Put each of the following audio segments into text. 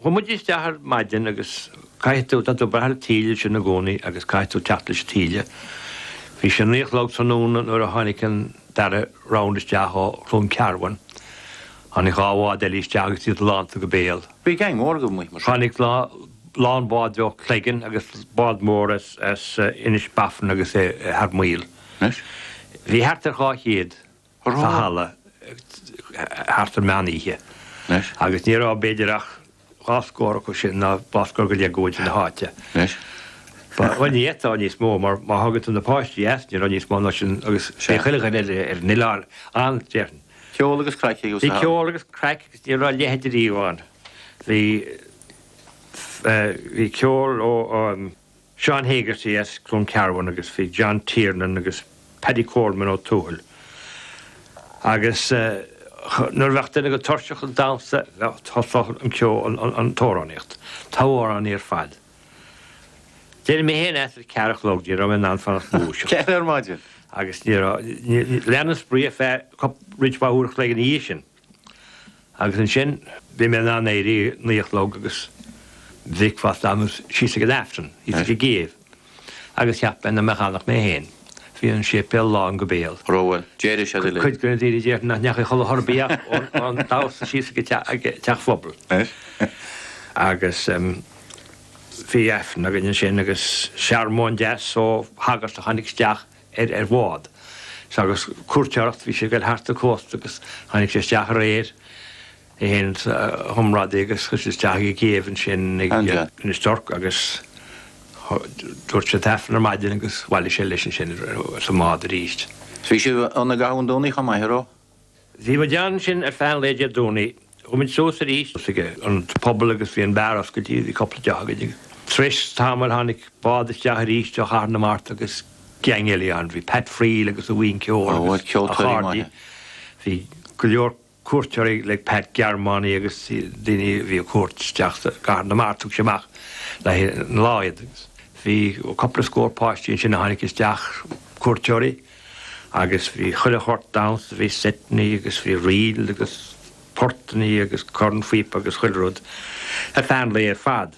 Chuaidh muid isteach ar maidin agus caithfidh tú, tá tú breathnú taoille ansin i gcónaí agus caithfidh tú teacht leis an taoille. Bhí sé naoi a chlog tráthnóna nuair a tháinig an dara round isteach ó Chluain Cearbán. Tháinig dhá bhád eile isteach agus iad lánta go béal. Bhí gang mór agaibh amuigh mar sin. Tháinig lán bád ó Cleggan agus bád mór as Inis Bó Finne agus é thar maoil. Anois? Bhí thart ar dhá chéad. sa halla thart ar mheán oíche agus ní raibh b'fhéidir ach dhá scór acu sin ná dhá scór go leith de chuid na háite. Ba dhuine iadtá níos mó mar má thagann tú na páistí as ní raibh níos mó ná sin agus is é chuile dhuine eile ar an oileán ann déarfainn. Ceol agus craic a bhí sa halla. Bhí ceol agus craic agus ní raibh a leithide riamh ann. Bhí, bhí ceol ó an, Seán Hegarty as Cluain Cearbán agus bhí John Tiernan agus Paddy Coleman ó Tuathail agus nuair a bheadh daoine tuirseach den damhsa thosódh an ceol, an t-amhránaíocht, togha amhráin ar fad. D'éirigh mé féin as ag ceathair a chlog, ní raibh mé in ann fanacht go dtús. Ceithre ar maidin! Agus lean an spraoi ar feadh roinnt mhaith uair a chloig ina dhiaidh sin. Agus ansin, bhí mé in ann éirí ag naoi a chlog agus bhí bricfeasta agam agus síos ag an Aifreann, thíos ag an gCéibh. Agus cheap mé nach mbeadh ann ach mé féin. Bhí an séipéal lán go béal. Rogha, d'éirigh siad uilig. Cuid de na daoine a déarfainn nach ndeachaigh a chodladh chor ar bith ach ón damhsa síos ag an teach pobail. Agus bhí Aifreann againn ansin agus searmóin deas ó shagart a tháinig isteach air ar bhád. Agus cuairteoireacht, bhí sé ag dul thart an cósta agus tháinig sé isteach aréir, é féin agus a chomrádaí agus chuaigh siad isteach i gcéibh ansin ag Inis Toirc agus dúirt sé an tAifreann ar maidin agus bhailigh sé leis ansin sa mbád aríst. Bhí sibh ann i gcaitheamh an Domhnaigh chomh maith, a raibh? Bhí muid ansin ar feadh an lae Dé Domhnaigh. Chuaigh muid suas arís, suas ag an bpobal agus bhí an beár oscailte, bhí cúpla deoch againn. Tar éis tamaill tháinig bád isteach arís ó Chathair na Mart agus geaing eile inti. Bhí Pat Friel agus a bhuíon ceoil agus a chairde. Bhí go leor cuairteoirí ag Pat, Gearmánaigh agus daoine a bhí ar cuairt isteach i gCathair na Mart. Thug sé amach le haghaidh an lá iad. Bhí cúpla scór páistí ansin a tháinig isteach, cuairteoirí. Agus bhí chuile shórt damhsa, bhí seiteannaí agus bhí ríleannaí agus portannaí agus cornphíopaí agus chuile rud ar feadh an lae ar fad.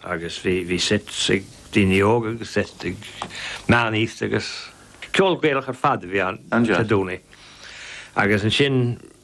Agus bhí, bhí seit ag daoine óga agus seit ag meánaosta agus ceol Gaelach ar fad a bhí ann, traidisiúnta. Agus ansin.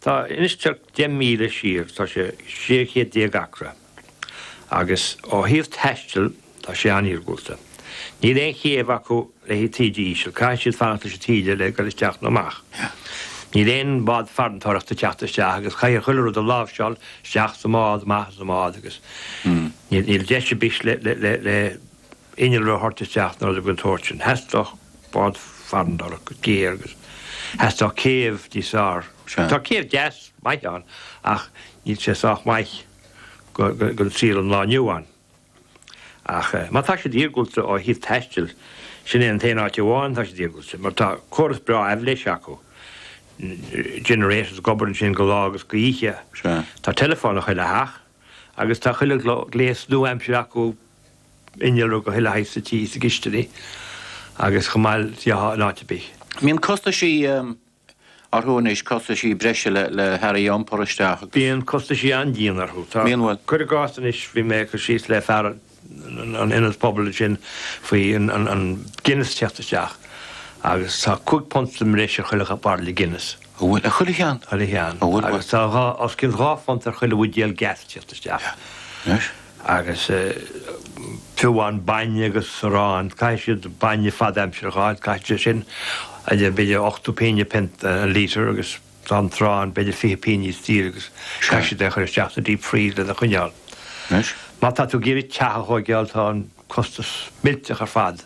Tá Inis Tuirc deich míle siar, tá sé sé chéad déag acra, agus ó thaobh taistil, tá sé an-iargúlta. Níl aon chéibh acu le haghaidh taoille íseal, caithfidh siad fanacht leis an taoille le ghoil isteach nó amach. Níl aon bhád farantóireachta ag teacht isteach agus caithfidh chuile rud a láimhseáil isteach sa mbád, amach as an mbád agus níl deis ar bith le inneall a thabhairt isteach ná dada den tsórt sin. Theastódh bád farantóireachta go géar agus theastódh céibh níos fearr. Tá céibh deas maith ann ach níl sé sách maith don saol an lá inniu ann. Ach má tá siad iargúlta ó thaobh taistil, sin é an t-aon áit amháin atá siad iargúlta, mar tá córas breá aibhléise acu, generators ag obair ansin de lá agus d'oíche. Tá teileafón i chuile theach. Agus tá chuile ghléas nua-aimseartha acu innealra de chuile shaghas sa tí, sa gcisteanach agus chomh maith le in áit ar bith. Bíonn costaisí orthu anois, costaisí breise le hearraí a iompar isteach agus. Bíonn costaisí an-dian orthu. Tá, cuir i gcás anois, bhí mé ag cur síos le fear a. an ionad pobail sin faoi an Guinness teacht isteach agus tá cúig phunt sa mbreis ar chuile bhairille Guinness. An bhfuil? Ar chuile cheann? Chuile cheann. An bhfuil? Agus tá dhá, os cionn dhá phunt ar chuile bhuidéal gas teacht isteach. Anois? Agus fiú amháin bainne agus arán, caithfidh siad bainne fad aimsire a fháil, caithfidh sé sin, b'fhéidir ochtó pínne an pionta, an lítear agus, An t-arán beidh sé fiche pínne níos daoire agus caithfidh siad é a chuir isteach sa deep freeze lena choinneáil. Anois, má tá tú ag iarraidh teach a thóigeáil tá an costas millteach ar fad,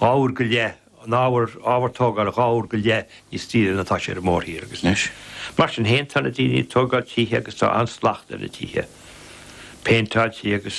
dhá uair go leith an ábhar, ábhar tógáil dhá uair go leith níos daoire ná tá sé ar an mórthír agus anois, mar sin féin tá na daoine ag tógáil tithe agus tá an-slacht ar na tithe, péinteáilte agus.